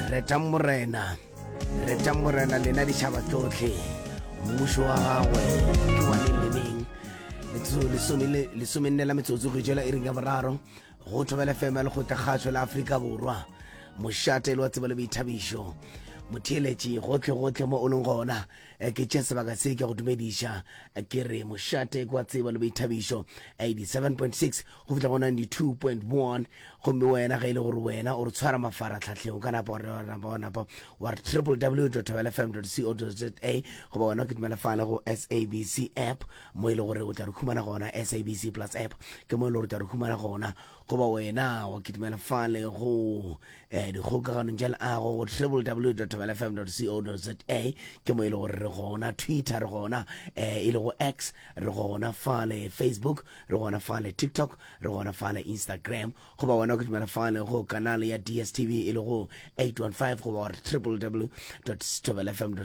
retang morena retang morena lena ditšhaba tsotlhe mmušo wa gagwe ke wane leneng lesomenne la metsotso go jela e ring ya boraro go thobela fema le go tekgatšho la aforika borwa mošate le wa tsebo le boithabišo motheeletši gotlhe gotlhe mo o leng gona eh, ke tše sebaka se ke go dumediša eh, ke re mošate kwa tsebo le boithabišo 87.6 go fihla go 92.1 gomme wena ge e le gore wena o re tshwara mafaratlhatlheng o ka napa wa napa wa napa wa re www tabelfm co za goba wena o kitimela fale go sabc app mo e le gore o tla re humana gona sabc plus app ke mo e le gore o tla re humana gona goba wena wa kitimela fale go eh, dikgokaganong tša leago go www tabelfm co za ke mo e le gore re gona twitter re gona eh, e le go x re gona fale facebook re gona fale tiktok re gona fale instagram goba wena go dumela fale go kanale ya dstv e le go 815 goba gore www stobelfm co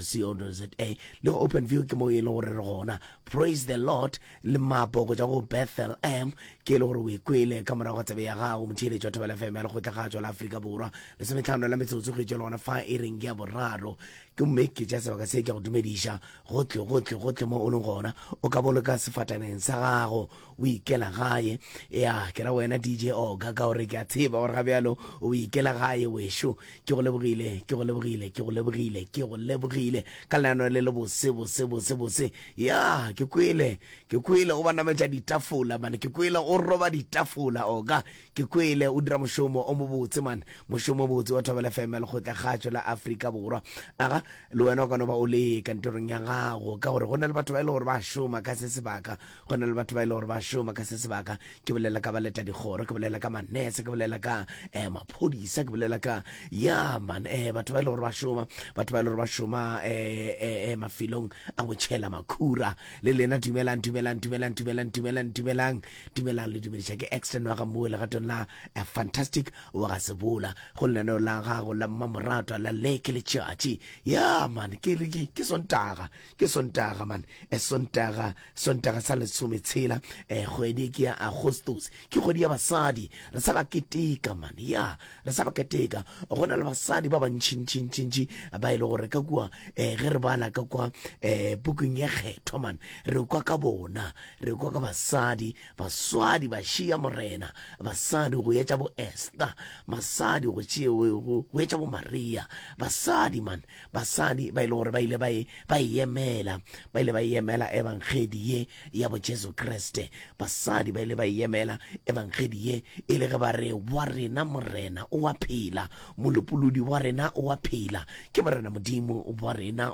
za le go open view ke mo e le gore re gona praise the lord le mapo go ja go bethel m ke e le gore o ikwele ka morago tsebe ya gago motheeletši wa thobela fm ya lekgotla ga tswa la aforika borwa lesometlhano la metsotso go itšwa le gona fa e reng ya boraro Gomme ke tša sebaka se ke go dumediša gohle, gohle, gohle mo o leng gona. O ka boloka sefataneng sa gago, o ikela gae. Ya, ke ra wena, DJ Oga, ka gore ke a tseba gore ga bjalo o ikela gae, wešo. Ke go lebogile, ke go lebogile, ke go lebogile, ke go lebogile ka leano le lebose, bose, bose, bose. Ya, ke kwele, ke kwele o ba nametša ditafola, mane. Ke kwele o roba ditafola, Oga. Ke kwele o dira mošomo o mobotse man. Mošomo o botse wa Thobela FM lekgotla kgatšo la Afrika Borwa. Aga le wena o ka no ba o le kantorong ya gago ka gore go na le batho ba e le gore ba šoma ka se sebaka. Go na le batho ba e le gore ba šoma ka se sebaka. Ke bolela ka baleta dikgoro, ke bolela ka manese, ke bolela ka eh, maphodisa, ke bolela ka ya man eh, batho ba e le gore ba šoma, batho ba e le gore ba šoma eh, eh, eh, mafelong a go tšhela makhura. Le lena dumelang, dumelang, dumelang, dumelang, dumelang, dumelang. Dumelang le dumediša ke Exton wa ga Moe legatong la a fantastic wa ga Sebola go lenaneo la gago la mmamoratwa la le ke letšatši ya man ke re ke sontaga ke sontaga man e sontaga sontaga sa lesome tshela e kgwedi ke ya agostos ke kgwedi ya basadi re sa ba keteka man ya re sa go keteka go na le basadi ba bantšhintšhintšhintši ba e le gore ka kua um ge re bala ka kwa um pukung ye kgethwa man re kwa ka bona re kwa ka basadi baswadi ba šia morena basadi go etša bo ester basadi go go etša bo maria basadi man basadi ba e le gore ba ile ba e, e yemela ba ile ba e yemela ebangedi ye ya bojesu kriste basadi ba ile ba yemela ebangedi ye e le ge ba re wa rena morena o a phela molopolodi wa rena o a phela ke morena modimo wa rena